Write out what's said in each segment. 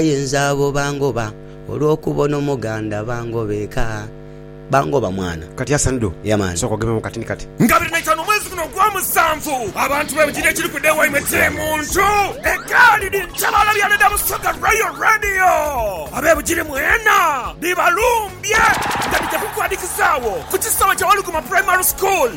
Aye nze abo bangoba olwokuba ono muganda bangoba eka bangoba mwana. Kati Hassan do Yeah man. sooka ogememu kati ni kati. Nga abiri na itaanu omwezi guno ogwa musanvu, abantu be bugiri ekiri kuda ewaimwe kye muntu egaali ni ntabaala bya Leda Busoga Royal Radio. Abe bugiri mwena bibalumbye nga bigya kukwadikizaawo ku kisaawe kya Waluguma Primary School.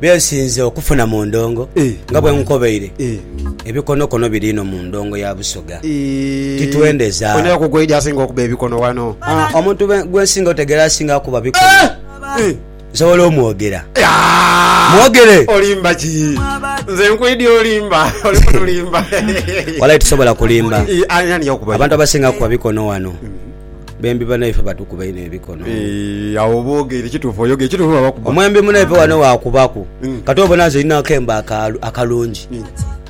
bye nsinze okufuna mu ndongo nga bwe nkobeire, ebikonokono biri inho mu ndongo ya Busoga. Titwendeza. Ono era ku gweidhi asinga okuba ebikono ghano. Omuntu gwe nsinga otegeera asinga kuba bikono. Nsobola omwogera? Mwogere! Olimba ki? Nze nkwidhi olimba. Oli kutulimba. Walai tisobola kulimba. Aye ani yakubayo? Abantu abasinga kuba bikono ghano. Bembi banaife batukuba inho ebikono. Eeh, agho oba ogeire kituufu oyogeire kituufu baba bakuba. Omwembi munaife ghano waakubaku Mm. kati obona nze nina akembe akalu- akalungi Mm.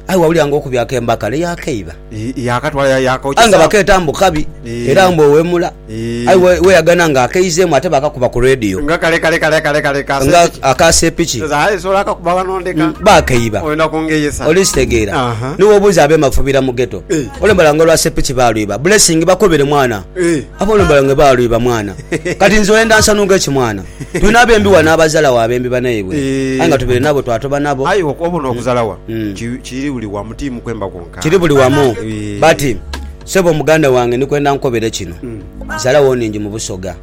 aye wawulira nga okubye akembe akale yakeiba Eeh, yakatwala ya- aye nga yakaokyesa. bakeeta mbu kabi Eh. era mbu owemula Eh. aye we- weyagana nga akeizemu ate bakakuba ku radio Nga kale kale kale kale kale kase. nga akasepiki Sasa aye sola akakuba wano ndeka. bakeiba Oyenda kungeyesa. olikitegeera Aha. niwobuuza abemafubira mu geto Eh. Olembala nga olwa sepiki balwiba blessing bakobere mwana abo olembala nga balwiba mwana kati nze oyenda nsanunke ki mwana tulina abembi wano abazalawo abembi banaibwe aye nga tubere nabo twatoba nabo aye obona okuzala wano kiri buli wamu ti mukwemba kwonka kiri buli wamu but sebo muganda wange ndikwenda nkukobere kino zalawo ningi mubusoga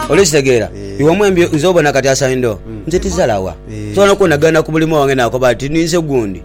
oli kitegera iwe omwembi nze obona kati asaindo nze tizalawa nsobola nokubona genda kubulimo wange nakoba nti ninze gundi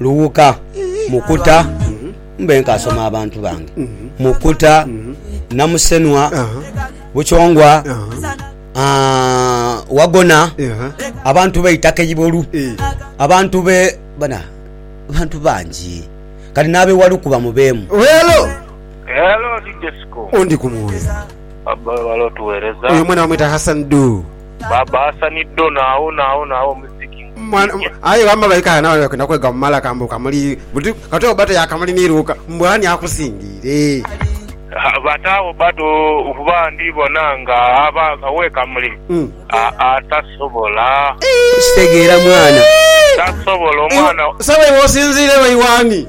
Luwuka, Mukuta, mbe nkaasoma abantu bange, Mukuta, Namusenwa, Bukyongwa, Wagona, abantu be itaka Ibolu, abantu be bantu bangi kati n'abe Waluku bamubeemu. Oyo omwana bamweta Hassan Ddu. ba Baasani dhona awonaawona agho mu Sikimu. Mwana, aye gamba baika aghano abana bakwenda kwega mu malaka mbu kamuli buti katoyo bba toya kamuli ni luuka mbu ani akusingiire? Bataagho bba to kuba ndi bona nga aba owe kamuli aa tasobola. Kitegeera mwana. Tasobola omwana. Sebo iwe osinziire wa iw'ani?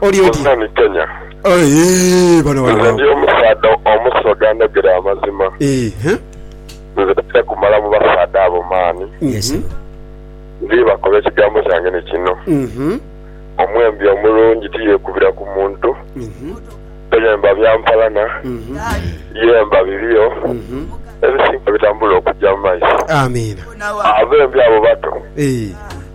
Oli oti? Museveni Kenya. Eehh bano bano Nze ndi omusaadha omusoga anogera amazima. Eehh. Nze tija kumala mu basaadha abo maani. Yes sebo. Ndhi bakoba ekigambo kyange ni kino. Uhmm. Omwembi omulungi tiyekubira ku muntu. Toyemba bya mpalana. Yemba birio ebisinga bitambule okuja mu maiso. Amiina. Abembi abo bato. Eehh.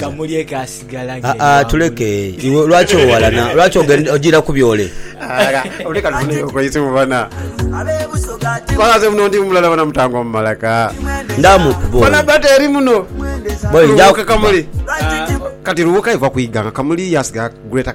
kamulye kaasigala ng'eyo Aa-aa, angulu. tuleke. Iwe lwaki owalana? Lwaki ogen- ojiira ku byole? Ala, leka tufune okwaisu bana. Kora nze muno ndi mulala bana mutango mu malaka. Ndaamu kubo. Bana bata eri muno. Boy, Lubuuka njakuba. kamuli. Kati lubuuka iva kwiganga kamuli yasigala greater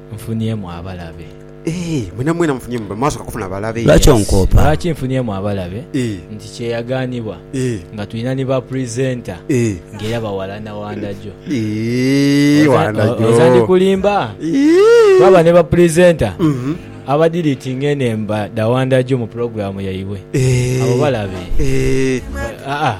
nfuniemu abalabe. Eeh mwena mwena nfuniemu abalabe mwasoka kufuna balabe. Lwaki onkoopa? Lwaki nfuniemu abalabe nti kyeyaganibwa nga tulina ni ba presenter nga era bawalana wandagyo. Oza ndikulimba? Twaba ne ba presenter aba deletinga enemba dha wandagyo mu program yaibwe. Abo balabe? Haa.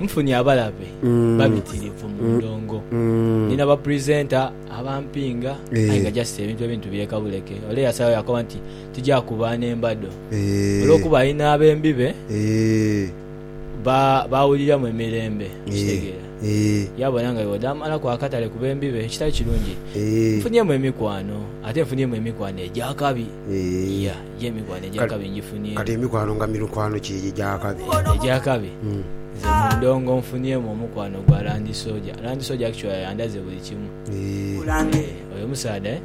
nfunye abalabe babitirivu mu ndhongo. Ndina bapurizenta abampinga aye nga just ebintu ebintu bireka buleke. Ole eyasalawo yakoba nti tija kuba n'embado olw'okuba alina abembi be b'awuliramu emirembe. Okitegeera? Yabona nga bw'oda amalaku akatale ku bembi be ekitali kirungi. Nfunyemu emikwano ate nfunyemu emikwano egy'akabi. Kati emikwano nga mirukwano ki egyo egy'akabi? Nze mu ndongo nfunyemu omukwano gwa Langi Soja. Langi Soja actually yandaze buli kimu. Oyo omusaadha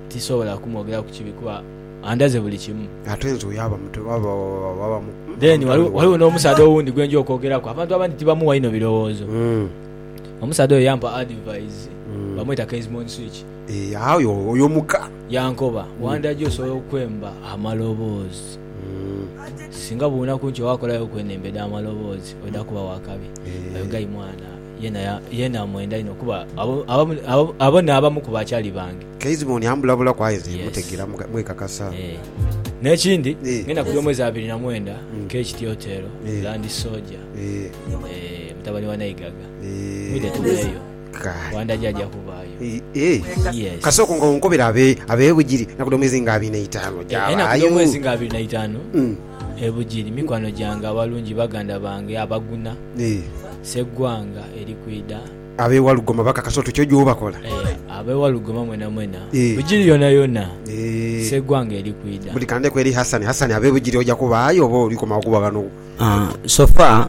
tisobola kumwogeraku kibi kuba andaze buli kimu. Ate nze oyo aba mutemu aba mukulu. Then waliwo n'omusaadha owundi gwe nja okwogeraku. Abantu abandi tibamuwa inho birowoozo. Omusaadha oyo yampa advise, bamweta Kezmon Switch. Aye oyo muka. Yankoba, Wandaja osobola okwemba amaloboozi. Singa buunaku nti wakolayo ku eno emba edh'amaloboozi oidha kuba wa kabi. Oyo guy mwana yeena amwenda inho kuba abo n'abamu ku bakyali bange. Keziboni ambulabulaku aye nze mmutegeera mwekakasa. N'ekindi, ngenda kulya omwezi abiri na mwenda Keith Tiotero, Land Soja, mutabani wa Naigaga. Mwidhe tubeeyo. Wanda jaja kubaayo. Kasa oko nga onkobera ab'e Bugiri nakudho mwezi nga abiri n'eitaanu oja baayo. Nakudho mwezi nga abiri n'eitaanu e Bugiri mikwano gyange abalungi, baganda bange abaguna. Sseggwanga eri kwidha. Ab'e Walugoma bakakasa oti kyoja obakola. Ab'e Walugoma mwenamwena. Bugiri yonayona Sseggwanga eri kwidha. Buli kandeku eri Hassani. Hassani ab'e Bugiri oja kubaayo oba oli komawo kuba ghano? So far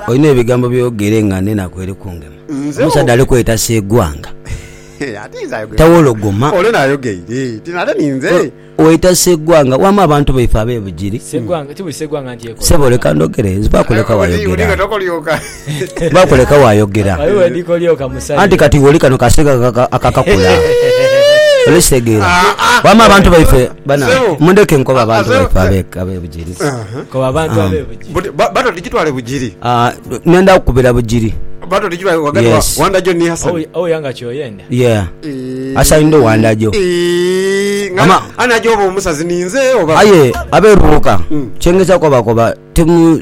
olina ebigambo byogere nga nenaku eri kungema. Omusaadha ali kweta Segwanga tawologoma. Weta Segwanga wama abantu baife abe Bugiri. Sebo leka ndogere nzibaku leka wayogera. Baku leka wayogera anti kati iwe oli kano kasege akakakula oli kitegera wama abantu baife bana mundeke nkoba abantu baife abe bugiri koba abantu abe bugiri bato tujitwale bugiri ah, nenda kukubira bugiri bato tujitwale wagati wa wandajo ni hasan oh, oh yanga kyoyenda yeah hasan ndo wandajo ama anajo obo omusazi ninze oba aye aberubuka mm. chengeza koba koba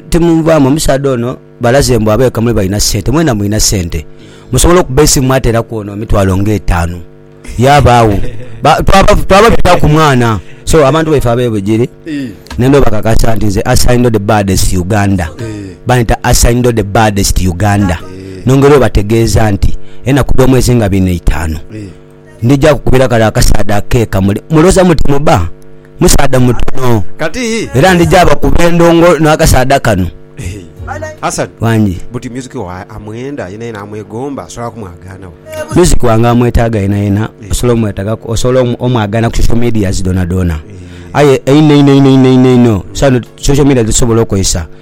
Timunvaamu, omusaadha ono balaze mbu abeeka mule balina ssente. Mwena mulina ssente. Musobola okuba esimu mwateeraku ono emitwalo nga etaanu. Yabaagho. Twaba tuta ku mwana. So abantu baife ab'e Bugiri nenda obakakasa nti nze Asaindo the baddest Uganda. Banyita Asaindo the baddest Uganda. Nongera obategeeza nti enaku dh'omwezi nga bina itaanu. Ndija kukubira kale akasaadha akeeka mule. Mulowooza muti mubba? Musaadha mutono. Kati hii. Era ndija bakuba endongo n'akasaadha kano. Hassan. Wangi. Buti music wa amwenda yena yena amwegomba asobola kumwagaana wa? Music wange amwetaaga yena yena osobola omwetagaku osobola omwagaana ku social medias dhoonadhoona. Aye einho einho einho einho einho einho, social media dhetusobola okozesa.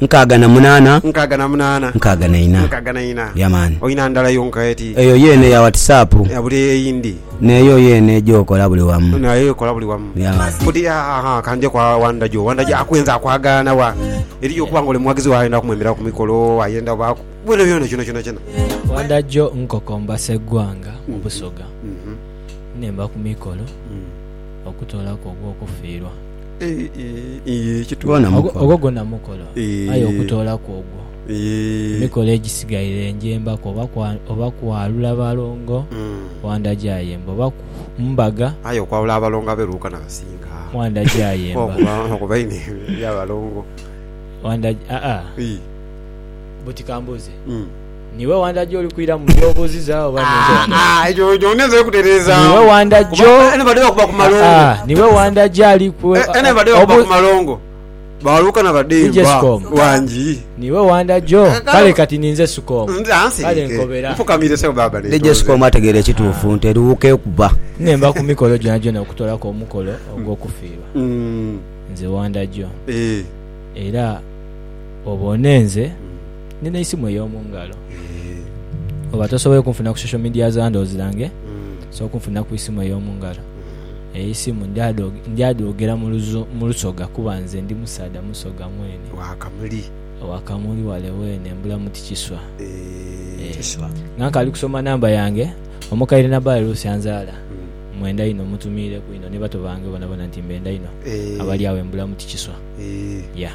Nkaaga na munaana. Nkaaga na munaana. Nkaaga na ina. Nkaaga na ina. Yeah man. Olina ndala yonka eti? Eyo yeene ya whatsapp. Yeah buli eyindi. Neeyo yeene gyokola buli wamu. Nayo ekola buli wamu. Yeah man. Buti ahaa kanje kwa Wandaji owo. Wandaji akwenze akwagaana wa? Eriyo okuba nga ole mughagizi we ayenda kumwemeraku ku mikolo, ayenda obaaku bwona bwona kyona kyonakyona. Wandaji nkokomba Sseggwanga mu Busoga nemba ku mikolo okutoolaku ogw'okufiirwa. Yee kitwana mukola. Ogwo gwona mukola aye okutoolaku ogwo emikolo egisigaire enjemba ku oba kwalula balongo Wanda Jayemba oba mbaga. Aye okwalula abalongo abe Luuka na Kasinga Wanda Jayemba okuba einho ebya balongo Wanda aa buti kambuuze. Niwe wandagya oli kwira mu by'obuuziza oba ninze wandagya? Ah, ah, ekyo ekyo ninze kutereezaamu. Niwe wandagya o- Kuba eno badde bakuba ku malongo. Ah, ah, niwe wandagya ali ku- Eh, eno badde bakuba obu- ku malongo. Baaluuka na badde Ije nva sikomu. wangi. Niwe wandagya o- Kale- Kale kati ninze sukoomu. Nze ansi Kale ike. nkobera. Nfukamire sebo baaba DJ neetonze. Sikomu ategeera ekituufu nti eriwuuka ekuba. Nemba ku mikolo gyona gyona okutoolaku omukolo ogw'okufiirwa. Mm, Nze wandagya o. eh. Era obone nze Nina eisimu ey'omu ngalo. Oba tosoboire kunfuna ku social media za ndhozi dhange, osobola okunfunira ku isimu ey'omu ngalo. Eyo eisimu ndyadha dwogera mu luzo- mu lusoga kuba nze ndi musaadha musoga mwene. Wa kamuli. Wa kamuli wale weene, mbulamu ti kiswa. Eeh. Kiswa. Nga nkaali kusoma namba yange, omukaire Nabbaale Ruth anzaala, mmwenda inho. Mmutumiireku inho ni bato bange boonabona nti mbenda inho. Eeh. Abali agho embulamu ti kiswa. Eeh. Yeah.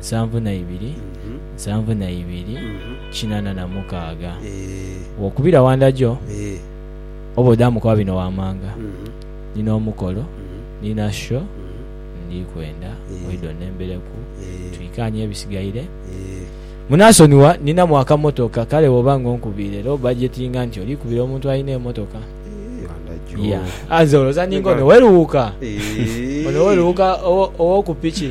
nsanvu na ibiri, nsanvu na ibiri, kinana na mukaaga. Wokubira wandagyo oba odamu kuba bino wamanga nina omukolo nina show ndikwenda oide onembereku twikanye ebisigaire munasonigha ninamu akamotoka kale bwoba nga onkubiire era obajetinga nti olikubira omuntu alina emotoka yeah nze olowoza ninga ono weriwuuka ono weriwuuka owoku piki.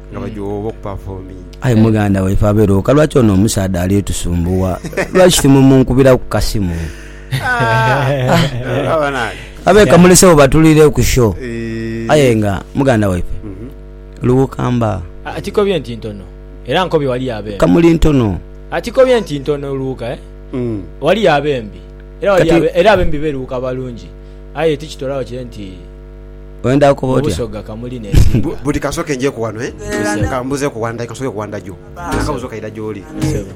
nga mm. bajowa oba okupafominga. Aye muganda waife abeera oka, lwaki ono omusaadha ali tusumbuwa? Lwaki timumunkubira ku kasimu? Abe kamulesewo batulire ku show. Eh. Aye nga muganda waife mhm. luwukamba akikobye ah, nti ntono era nkobye wali yabe kamuli ntono akikobye ah, nti ntono luwuka eh? mm. wali yabe mbi era abembi beruwuka balungi aye tikitorawo kye nti Mu Busoga kamuli n'esinga. Buti kansoke njeku wano eh kambuzeku one day kansoke ku one day Nina akabuzo kaidha gyoli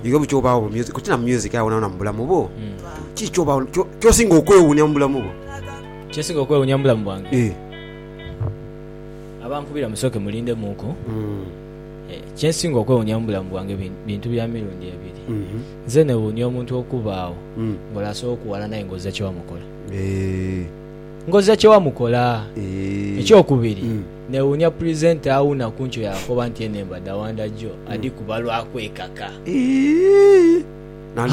iwe bukya obagho mu music koti na mu music aye wonawona mubulamu bwo kiki kyobagho kyosinga okwewunya mubulamu bwo Kyensinga okwewunya mubulamu bwange eh abankubira musooke mulindemuuku Kyensinga okwewunya mubulamu bwange bintu bya mirundi ebiri nze newunya omuntu okubaagho nga oli asobola okuwalana aye nga ozira kyewamukola. Ngoza kye wamukola. Ekyokubiri, newuunya purizenta awuuna ku nkyo yaakoba nti eno embada Wandagio adhikuba lwa kwekaka.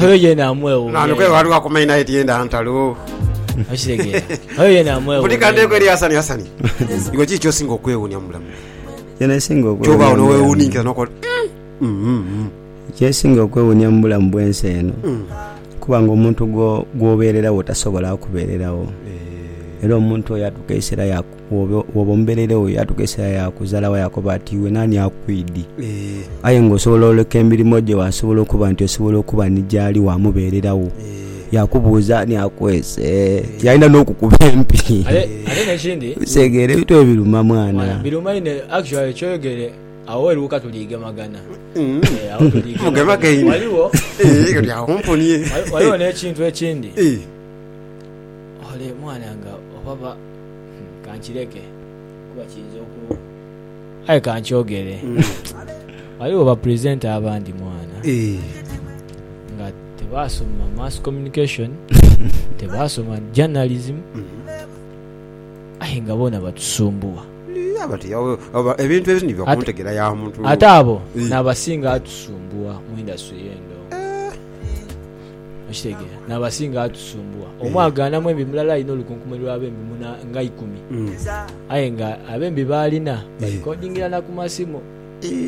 Oyo yeena amwewuunya inho. Kyensinga okwewuunia mu bulamu bw'ensi eno, kuba nga omuntu gwobeereregho tasobola kubeereregho. Era omuntu oyo yatuuka eisera ya, bwoba omubeereire wo, yatuuka eisera yakuzalawo yakoba ati, Iwe naani akuidhi? Aye nga osobola oleka emirimo gye wasobola okuba nti osobola okuba ni gyali wamubeereregho. Yakubuuza ani akweese, yaidha n'okukuba empi. Ate n'ekindi, Ebintu ebyo biruma mwana. biruma inho actually kyoyogere. Agho weruuka tuliigemagana. Agho tuliigemagana. Ghaligho. Oli agho omponie. Ghaligho n'ekintu ekindi. Ole mwana nga oba ba. Kankireke kuba kiyinza oku. Aye kankyogere. Ghaligho bapresenter abandi mwana. Nga tebaasoma mass communication, tebaasoma journalism aye nga boona batusumbuwa. Ate abo n'abasinga atusumbuwa mu industry eno. Okitegeera? N'abasinga atusumbuwa. Omu agaanamu embi mulala alina olukunkumuli lw'abembi nga ikumi. Aye nga abembi b'alina balikodingira na ku masimu.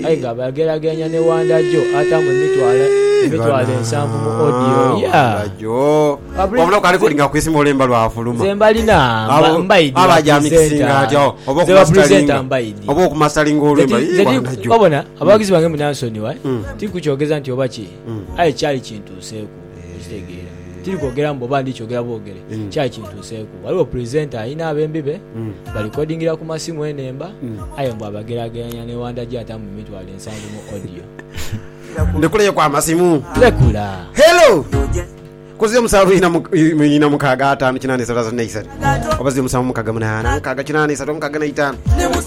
aye nga bwagerageranya ne wanda jo ataamu emitwalo emitwalo ensanvu mu odiyo ye. Obona, abawagizi bange munansonigha, tiri kukyogeza nti oba ki, aye kyali kintuuseeku. Okitegeera. Tiri kwogera mbu oba ndi kyogera bwogere. Kyali kintuuseeku. Ghaligho presenter alina abembi be, barecordingira ku masimu enhemba, aye mbu abageraageranya ne Wandagi atambula emitwalo ensanvu mu audio. Ndhikuleeku amasimu. Lekula. Hello! Kuzia omusanvu ina mu- i- mu- ina mukaaga ataanu kinaana isatu asatu n'eisatu. Oba zia omusanvu mukaaga munaana mukaaga kinaana isatu mukaaga na itaanu.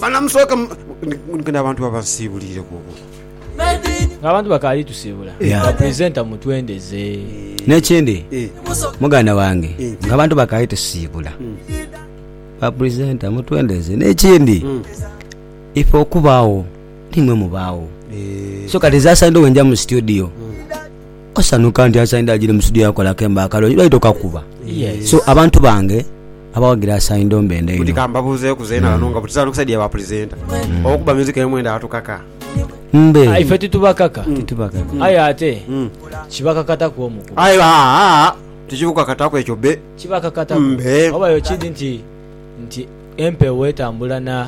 Banamusooka mu- ndi- ndi- ndi abantu abansiibuliire ku- ku- Ng'abantu bakaali tusiibula, nga purizenta mutwendeze. N'ekindi, muganda wange, ng'abantu bakaali tusiibula, nga purizenta mutwendeze. N'ekindi, ife okubaagho n'imwe mubaagho. So kati nze asaidha obwenja mu situdiyo, osanhuka nti asaidha agire mu situdiyo akole akembo akalungi, baidha okakuba. So abantu bange. Abawagira Saindo mbendha inho. Buti ka mbabuuzeeku zeena ghano nga buti za lukisa dhia ba pulezenta okukuba myuziki eyo mwendha atukaka? Mbe. Ife titubakaka. Titubakaka. Aye ate kibakakataku omukubi. Aye aa tikikukakataku ekyo be. Kibakakataku. Mbe. Oba yo kidi nti nti empewo etambula na.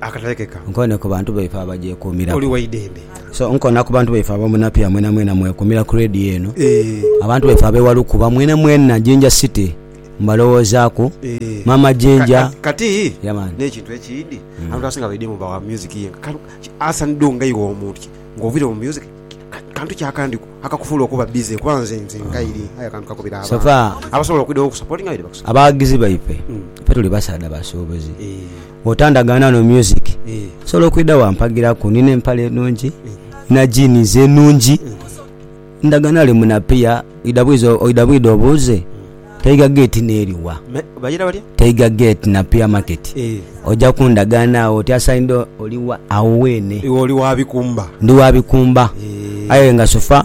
akatalekeka. Nkoone ku bantu baife abagyekuumiraku. Oli wa idembe. So, nkoona ku bantu baife Abamunapiya mwenamwena mwekuumira ku Radio eno. Abantu baife ab'e Walukuba mwenamwena, Jinja City, mbalowoozaaku. Maama Jinja. Kati, Yeah man. n'ekintu ekindi, abantu abasinga baidemu bawa music yenka. Kale, ki, Hassan Doo nga iwe omuntu ki, ng'oviire mu music, ki, ka, kantu ki akandi akakufuula okuba busy? Kuba nze, nze nga iri, aye akantu kakubira So abantu far, abasobola okwidhagho okukusapotinga baidhe bakusapotinge. abawagizi baife, ffe tuli basaadha basuubuzi. Eeh. Bw'otandagaana no music, osobola okwidha wampagiraku. Nina empale enhungi, nina jeans enhungi, ndagaana ole munapiya, oidha bwiza, oidha bwidha obuuze Tiger Gate n'eri wa? Bagira batya? Tiger Gate Napier Market. Oja kundagaana agho oti, Asaindha oli wa? Agho weene. Iwe oli wa bikumba? Ndi wa bikumba. Aye nga sufa.